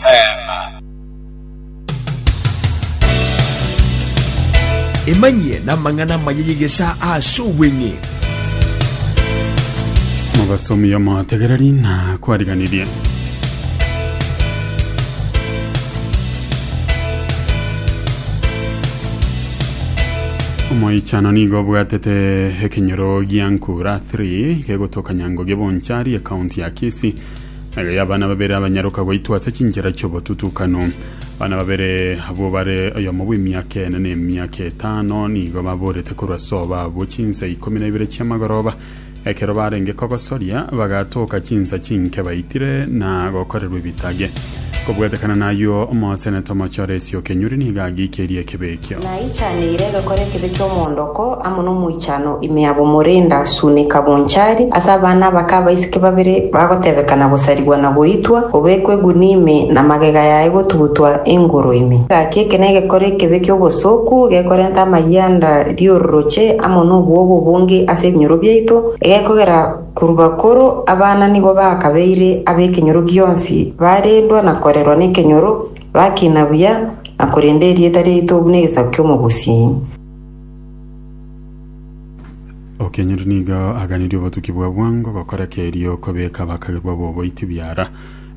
Teema. Emanyie namang'ana amaya y'egesa ase obweng'e. Mobasomi omotegereri na kwariganirie. Omoichano nigo obwatete ekenyoro gia Nkura 3 gegotokanya Ngugi Bonchari ekaunti ya Kisii Eyo y'abana babere abanyaroka goitwa ase chinchera chi'obotutukano. Abana babere abwo bare oyomo bw'emiaka ene na emiaka etano nigo baborete korwa ase obabwo chinsa ikomi na ibere chi'amagoroba. Ekero barenge kogosoria, bagatoka chinsa chinke baitire na gokorerwa ebitage. Kobwatekana nayio, omoseneta omochore Esiokenyuri nigo agiikerie ekebe ekio. Naichaneire ngakora ekebe ki'omoondoko amo nomoichano ime ya bomorinda sunika bonchari ase abana abake abaiseke babere bagotebekana gosarigwa na goitwa, gobekwa egunia ime na magega yaye gotugutwa engoro ime. Gaki eke negekora ekebe ki'obosooku, gekorenta amayianda ri'ororoche amo nobwogo obonge ase ebinyoro biaito, egekogera korwa bakoro abana nigo bakabeire ab'ekenyoro gionsi, barendwa na korerwa nekenyoro, Bakina buya, na korende erieta riaito buna egesaku ki'omogusii. Okenyori nigo aganirie obotuki bwa bwango gokora kerio kobeka abakagerwa b'oboiti biara,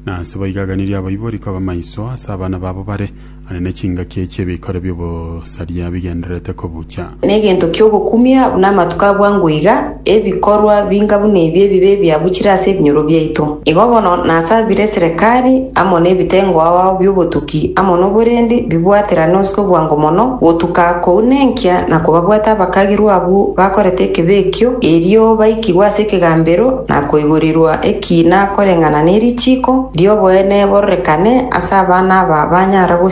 na ase boigo aganirie abaibori koba maiso ase abana babo bare ane ne chingaki chi'ebikoro bi'obosaria. saria bigendererete kobuucha. Negento kiogokumia buna amatuko abwango iga, ebikorwa binga buna ebi ebibe biabuchire ase ebinyoro biaito. Igo bono nasabire eserekari amo nebitengo aao biobotuki amo noborendi bibwaterane ase obwango mono gotuka kouna enkia na kobabwata abakagirwa abwo bakorete ekebe ekio, erio baikigwe ase ekegambero na koigorirwa ekiina koreng'ana nerichiko rioboene bororekane ase abana aba banyara gosiria.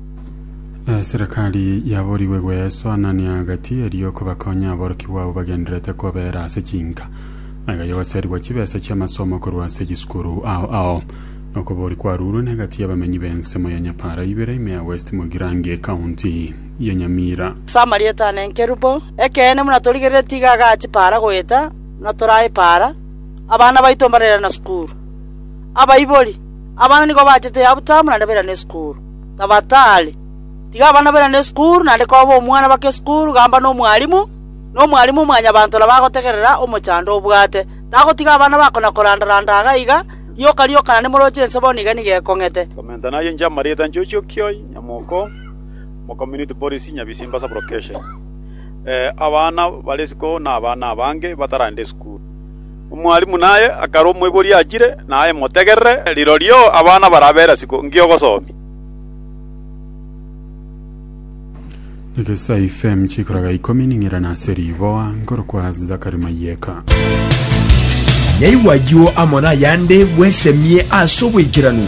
Eserekari yaborigwe gweswa Anania agati, erio kobakonye aborokigwa abwo bagendererete kobera ase chinka. Agaya ogoserigwa chibesa chi'amasomo korwa ase chisukuru ao ao. Okobori kwarurwe negati y'abamenyi b'ensemo ya Nyapara ibere ime ya West Mugirango ecounty ya Nyamira. Ase amarieta ane nkerubo. Ekeene buna torigerire tiga agache para goeta buna torae para, abana baito mbarerana sukuru. Abaibori, Abana nigo bachete yabutama naende bairane sukuru. tabatari. Tiga abana bairane esukuru naende koba omwana baka esukuru gamba nomwalimu, na omwalimu mwanyabanto nabo agotegerera omochando obwate. Tagotiga abana bako na koranda‐randa iga na iga, rioka rioka naende moroche inse bono iga nigo ekong'ete. Commenter naye inche amarita inche ochio kioi nyamoko omo community policy nyabisimba sub location abana bare isiko na abana abange bataragenda esukuru. Omwalimu naye akare omoibori achire, naye motegerere, rirorio abana barabera isiko ngiogosoomia. Negesai FM chikoraga ikomi ning'ira nase riboa nkorokwa Zakari Mayeka. Nyaigwa ayio amo nayande bwesemie ase oboikeranu.